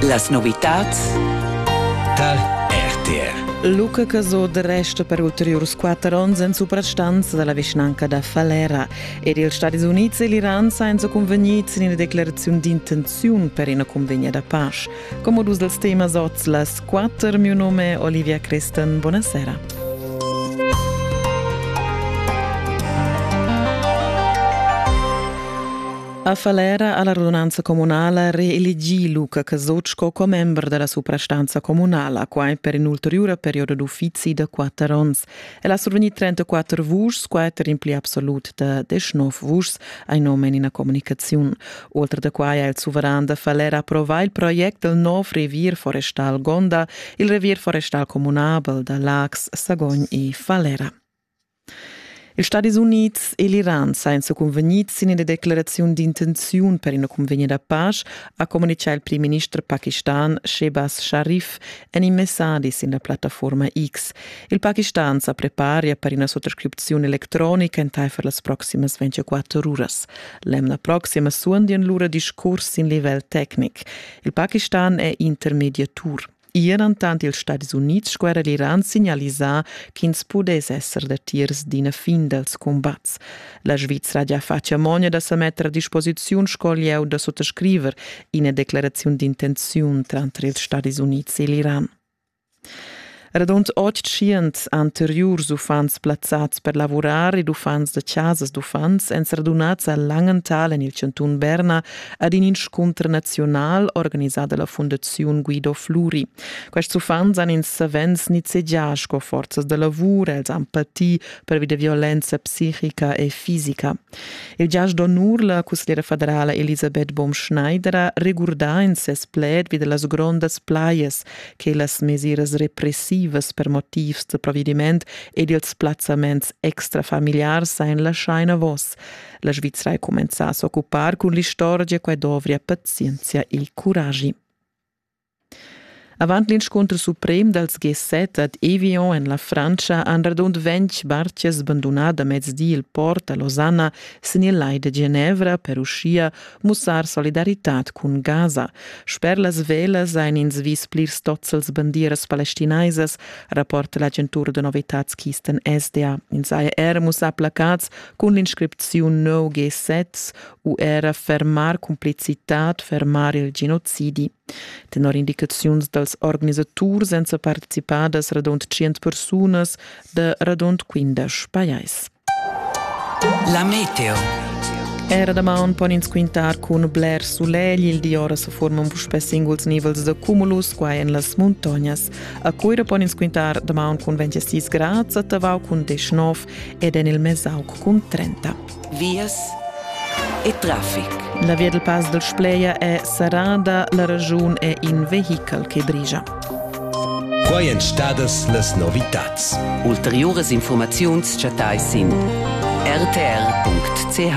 Las novitads tar RTR. Luca Casot resta per ulteriurs quatter onns en suprastanza da la vischnanca da Falera. Ed ils Stadis Unids e l'Iran sajan cunvegnids in ina decleraziun d'intenziun per ina cunvegna da pace. Come dus dels temas oz las quatter, mio nome Olivia Crestan, buonasera. A Falera ha la radunanza comunala reelegì Luca Casoc sco commember da la suprastanza comunala, quai per in'ulteriura perioda d'uffizi da quatter onns. El ha survegnì 34 vuschs, quatter in pli absolut da 19 vuschs, ein nome en ina comunicaziun. Oltre da quai ha il suveran da Falera approvà il project del nov revier forestal Gonda, il revier forestal comunabel da Lax, Sagogn e Falera. Ils Stadis Unids e l'Iran sajan sa cunvegnids sin ina decleraziun d'intenziun per ina cunvegna da pasch, ha communitgà il primminister pakistan Shehbaz Sharif en in messadi sin la plattaforma X. Il Pakistan sa preparia per ina suttascripziun electronica entaifer las proximas 24 uras. L'emna proxima suondian lura discurs sin livel tecnic. Il Pakistan è intermediatur. Ier entant ils Stadis Unids sco era l'Iran signalisà ch'ins pudess esser datiers d'ina fin dals cumbats. La Svizra gia fatg amogna da sa metter a disposiziun sco lieu da suttascriver ina declaraziun d'intenziun tranter ils Stadis Unids e l'Iran. Radund 800 anteriurs uffants plazzads per lavurar ed uffants da chasas d'uffants èn radunads a Langenthal en il chantun Berna ad in inscunter nazional organisà dalla Fondaziun Guido Fluri. Quests uffants han ins savens nizzegià sco forzas da lavur, els han patì pervi da violenza psichica e fisica. Il giasch d'onur, la cusgliera federala Elisabeth Baumschneider regurdà in ses pled vi las grondas plajas che las mesiras repressivas per motivs da provvediment ed ils plazzaments extrafamiliars ein lasciai enavos. La Svizra ha cumenzà a s'occupar cun l'istorgia quai dovria pazienzia il curagi. Avant l'inscunter suprem dals G7 ad Evian en la Frantscha han radund ventg bartgas bandunà da mezdi il port a Losanna sin il lai de Genevra per uschia mussar solidaritad cun Gaza. Sper las velas ein ins vis plirs tozzels bandieras palestinaisas, rapporta l'agentura de novitads Kisten SDA. Ins ha er mussà placats cun l'inscripziun no G7 u era fermar cumplicitad, fermar il genocidi. Tenor indicaziuns dals organisaturs èn participadas radund 100 persunas da radund 15 pajais. La meteo. Era damaun pon ins quintar cun bler sulegl. Il di ora se forman puspè singuls nivels de cumulus qua en las muntognas. A Cuira pon ins quintar damaun cun 26 grads, a Tavau cun 19 ed en il Mesauc cun 30. Vias e traffic. La via del Pass del Spleia è serrada, la ragiun è in vehichel che brigia. Quai èn stadas las novitads. Ulteriuras informaziuns chattai sin rtr.ch.